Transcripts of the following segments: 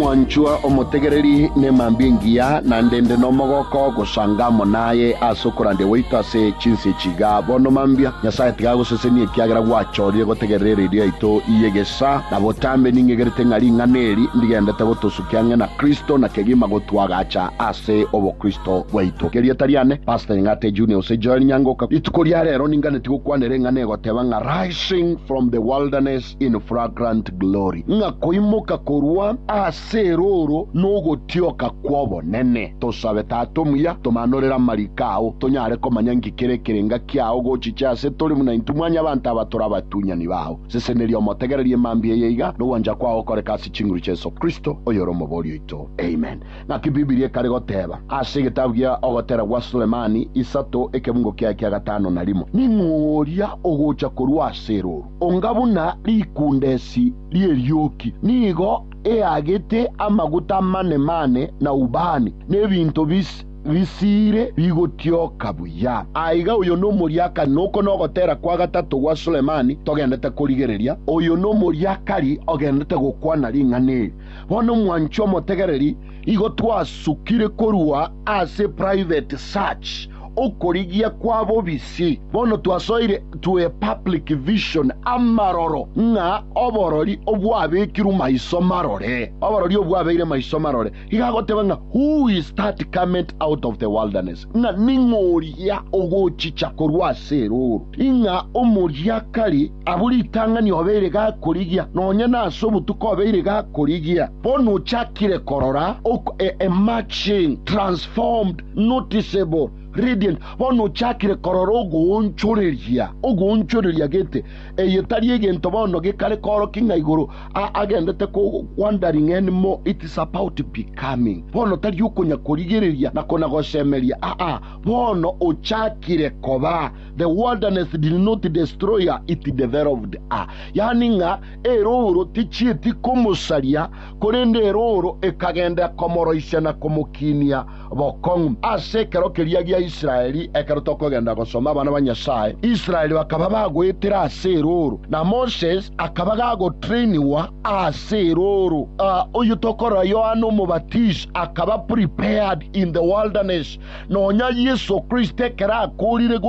Mwanchwa omotegereri nemambia engiya, naende inde nomogoko gosanga amo naye ase okorandia gwaito ase chinse echi iga. Bono mambia, Nyasae tiga agosesenie ekiagera gwachorire gotegerera eredio yaito y'egesaa. Nabo tambe ning'egerete ng'a ring'ana eri ndigendete gotosukia ang'e na Kristo na kegima gotwagacha ase obokristo bwaito. Gerieta riane, Pastor Nyang'ate Junior gose Joel Nyangoka. Rituko ria rero ninganeti gokwanera eng'ana egoteba ng'a Rising from the Wilderness, emerged in fragrant glory, ng'a koimoka korwa ase erooro nogotioka kw'obonene. Tosabe, Tata omuya, tomanorere amariko ao, tonyare komanya inki kere ekerenga kiao gochiche ase tore buna intwe mwanyabanto aba tore abatunyani bao. Seseneria omotegererie mambia eye iga, nogwancha kwao gokoreke ase chinguru chia Yeso Kristo, oyore Omobori oito. Amen. Naki Bibilia ekare goteba ase egetabu gia Ogotera gwa Sulemani isato ekebungo kiaye kia gatano na rimo, Ning'o oria ogocha korwa ase erooro? Onga buna rikundesi ri'erioki, nigo eagete amaguta amane-mane na ubani, na ebinto bisiire bigotioka buya. Aiga oyo nomoria akari, na oko nogotera kwa gatato gwa Sulemani togendete korigereria, oyo nomoria akari ogendete gokwana ring'ana eri. Bono omwanchi omotegereri igo twasukire korwa ase private search, okorigia kwa bobisi, bono twasoire to a public vision, amaroro, ng'a oborori obwabekirwe maiso marore, oborori obwabeire maiso marore, iga agoteba ng'a, Who is that cometh out of the wilderness? ng'a ning'o oria ogochicha korwa ase erooro, ing'a omoria kare abwo ritang'ani obeire gakorigia, nonya nase obotuko obeire gakorigia, bono ochakire korora ok e, emerging, transformed, noticeable, radiant, bono ochakire korora ogoonchoreria, ogoonchoreria gete, eye tari egento bono gekare koorokia ng'a igoro, agendete kogwanda ring'eni mo it is about becoming bono tari okonya korigereria na kona gosemeria aa bono ochakire koba the wilderness did not destroy her it developed her yani ng'a erooro tichieti komosaria korende erooro ekagenda komoroisia na komokinia bokong'u ase ekero keria gia Israeli, ekero tokogenda gosoma abana ba Nyasae, Israeli bakaba bagoetire ase erooro, na Moses akaba gagotrainigwa ase erooro. Uh, oyio tokorora Yohana Omobatisi akaba prepared in the wilderness. Nonya Yeso Kristo ekero akoorire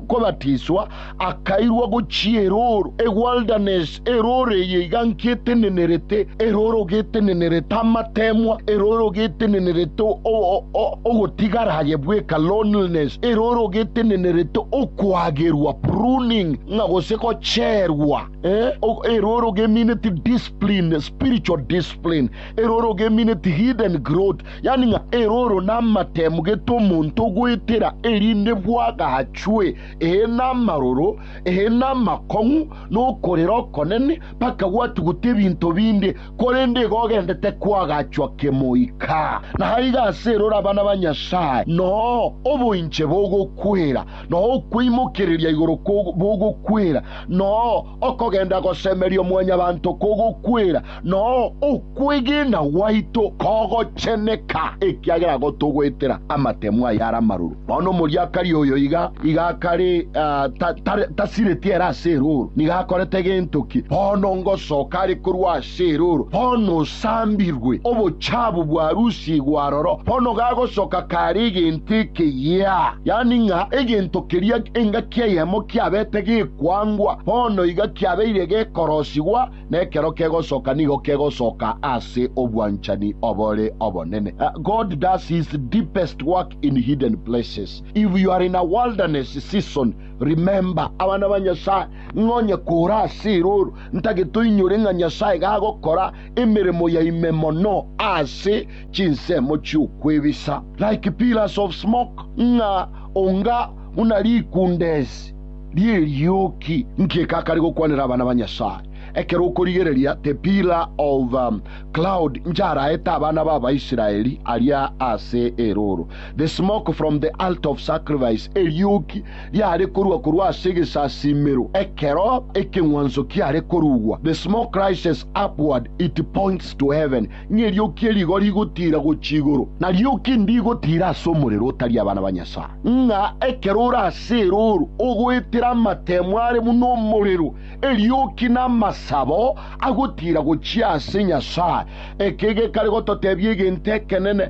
kobatiswa, Akairwa gochia erooro, a wilderness, erooro eye iganki etenenerete, erooro getenenerete amateemwa, erooro getenenerete ogotigara aye bweka, loneliness, erooro getenenerete okoagerwa, pruning, ng'a gose gocherwa, eh, erooro gemineti discipline, spiritual discipline, erooro gemineti hidden growth, yaani ng'a erooro namateemu gete omonto ogoetera erinde bwagachwe ee, namaroro, ee, namakong'u, na okorera okonene, bakagwatugute ebinto binde, korende igo ogendete koagachwa kemoika. Na aiga ase erore abana ba Nyasae noo oboinche bogokwera, noo okweimokereria igoro bogokwera, noo Okogenda gosemeria omwanyabanto kogokwera, nao okwegena gwaito kogocheneka, ekiagera gotogwetera amatemo ayare amaroro. Bono omoriakari oyo iga iga akare ah, ta, ta, tasireti ere ase erooro. Nigo akorete gento ki? Bono ngosoka are korwa ase Seroro, bono osambirwe, obochabu bwarusigwe aroro, bono gagosoka kare egento ekeyia, yaani ng'a egento keria engaki eyemo kiabete gekwangwa, bono iga kiabeire gekorosigwa, na ekero kegosoka nigo kegosoka ase obwanchani obore obonene. God does his deepest work in hidden places. If you are in a wilderness season, remember abana ba Nyasaye, ng'a onye kore ase eroro, Ntagete oinyore ng'a Nyasae gagokora emeremo ya ime mono ase chinsemo chi'okwebisa, like pillars of smoke, ng'a onga buna rikundesi ri'erioki. Nki ekakare gokwanera abana ba Nyasae? Ekero okorigereria the pillar of cloud njaraete abana b'Abaisraeli aria ase erooro, the smoke from the altar of sacrifice, erioki riare korua korwa ase egesasiimero ekero ekeng'wanso kiare korugwa, the small crisis upward it points to heaven, ng'a erioki erigo rigotiira gochia igoro, na rioki ndigotiira ase omorero otari abana ba Nyasae, ng'a ekero ore ase erooro ogoetera amateemo are buna omorero, erioki namasabo agotiira gochia ase Nyasae. Eke gekare gototebia egento ekenene,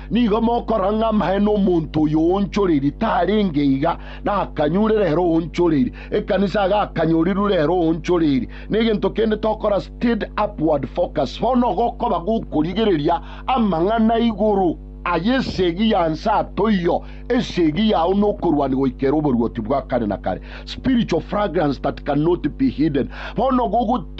Nigo mokora ng'a amae nomonto oyo oonchoreirie tarenge iga, na akanyure rero oonchoreirie, ekanisa iga akanyorirwe rero oonchoreirie. Negento kende tokora steady upward focus. Bono gokoba gokorigereria amang'ana igoro aye esegi ya nsato iyo, esegi yao nokorwania goika ere oboruoti bwa kare na kare, spiritual fragrance that cannot be hidden. Bono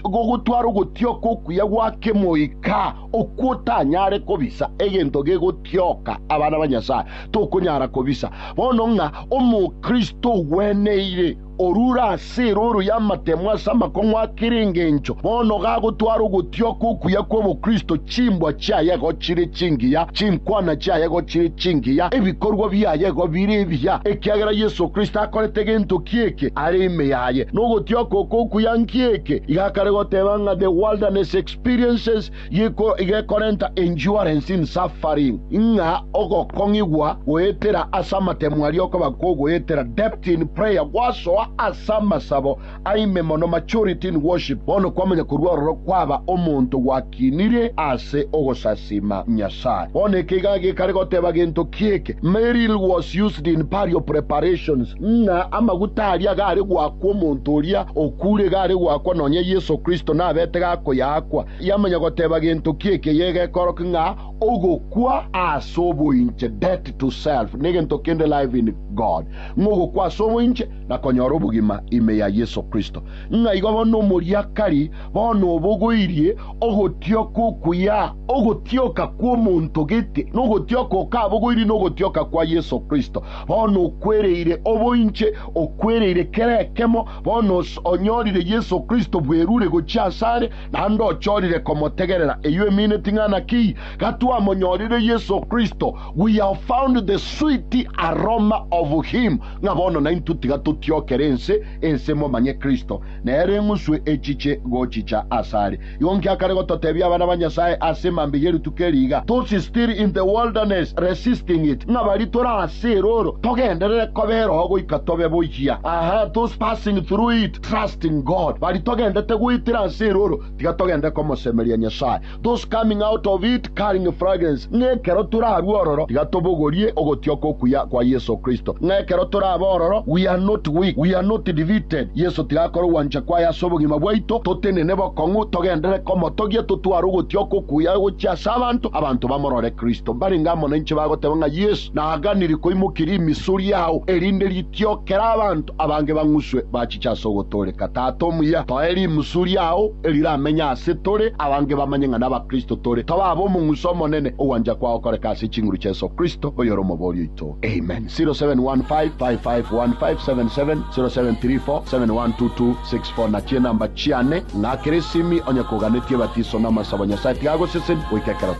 gogotwara ogotioka okuya gwa kemoika. Okwo otanyare kobisa egento gegotioka abana ba Nyasae, tokonyara kobisa bono ng'a Omokristo ogweneire orure ase erooro y'amatemo ase amakong'u a kera engencho, bono gagotwara ogotioka okuya kw'obokristo, chimbwa chiaye igo chire chingiya, chinkwana chiaye igo chire chingiya, ebikorwa biaye igo bire ebiya, ekiagera Yeso Kristo akorete gento ki'eke are ime yaye. Nogotioka oko okuya nki'eke iga kare goteba ng'a The Wilderness Experience. experiences gekorenta endurance in suffering, ng'a ogokong'igwa goetera ase amatemo aria okoba kogoetera, depth in prayer, gwasoa ase amasabo aime mono, maturity in worship, bono kwamanya korwa ororo kwaba omonto gwakinire ase ogosasiima Nyasae. Bono eke iga gekare goteba gento ki'eke, Merrill was used in burial preparations. ng'a amaguta aria gare goakwa omonto oria okuure gare goakwa nonya Yeso Kristo nabete gakoyaakwa, yamanya goteba gento ki ekeyio egekoroki ng'a ogokwa ase oboinche, death to self, na egento kende, life in God, ng'a ogokwa ase oboinche na konyora obogima ime ya Yeso Kristo. Ng'a igo bono omoriakari bono obogoirie ogotioka okuya, ogotioka kw'omonto gete, na ogotioka okabogoirie na ogotioka kwa Yeso Kristo. Bono okwereire oboinche, okwereire kera ekemo, bono onyorire Yeso Kristo bwerure gochia asare, naende ochorire komotegerera. Eyio emine ting'ana ki? Gatwamonyorire Yeso Kristo, we have found the sweet aroma of him, ng'a bono naintwe tiga totiokere ense, ense momanye Kristo, nere eng'uswe echiche gochicha asare. Igo nki akare gototebia abana ba Nyasae ase mambia ye rituko eri iga, Tosi still in the wilderness resisting it, ng'a bari tore ase erooro togenderere koba eroho goika tobe boyia. Aha, those passing through it trusting God, bari togendete goetera ase erooro tiga togendere komosemeria Nyasae, those coming out of it, Carrying Fragrance, ng'a ekero torarue ororo tiga tobogorie ogotioka okuya kwa Yeso Kristo. Ng'a ekero torabe ororo, we are not weak, we are not defeated, Yeso tiga akore ogwancha kwaye ase obogima bwaito, totenene bokong'u, togenderere komotogia, totware ogotioka okuya gochia ase abanto, abanto bamorore Kristo. Mbarenge amo nainche bagoteba ng'a Yeso. Naganirie koimokia rimisu riao, erinde ritiokere abanto abange bang'uswe bachiche ase ogotooreka. Tata omuya, toe rimusu riao eriramenye ase tore, abange bamanye ng'a n'Abakristo tore. Toba aba omong'uso omonene, ogwancha kwao koreke ase chinguru chia Yeso Kristo, oyore Omoboori oito. Amen. 0715551577, 0734712264 na chinamba chiane, ng'a kera esimi onye koganetie ebatiso na amasabo Nyasae tiga agoseseni goika ekero tore.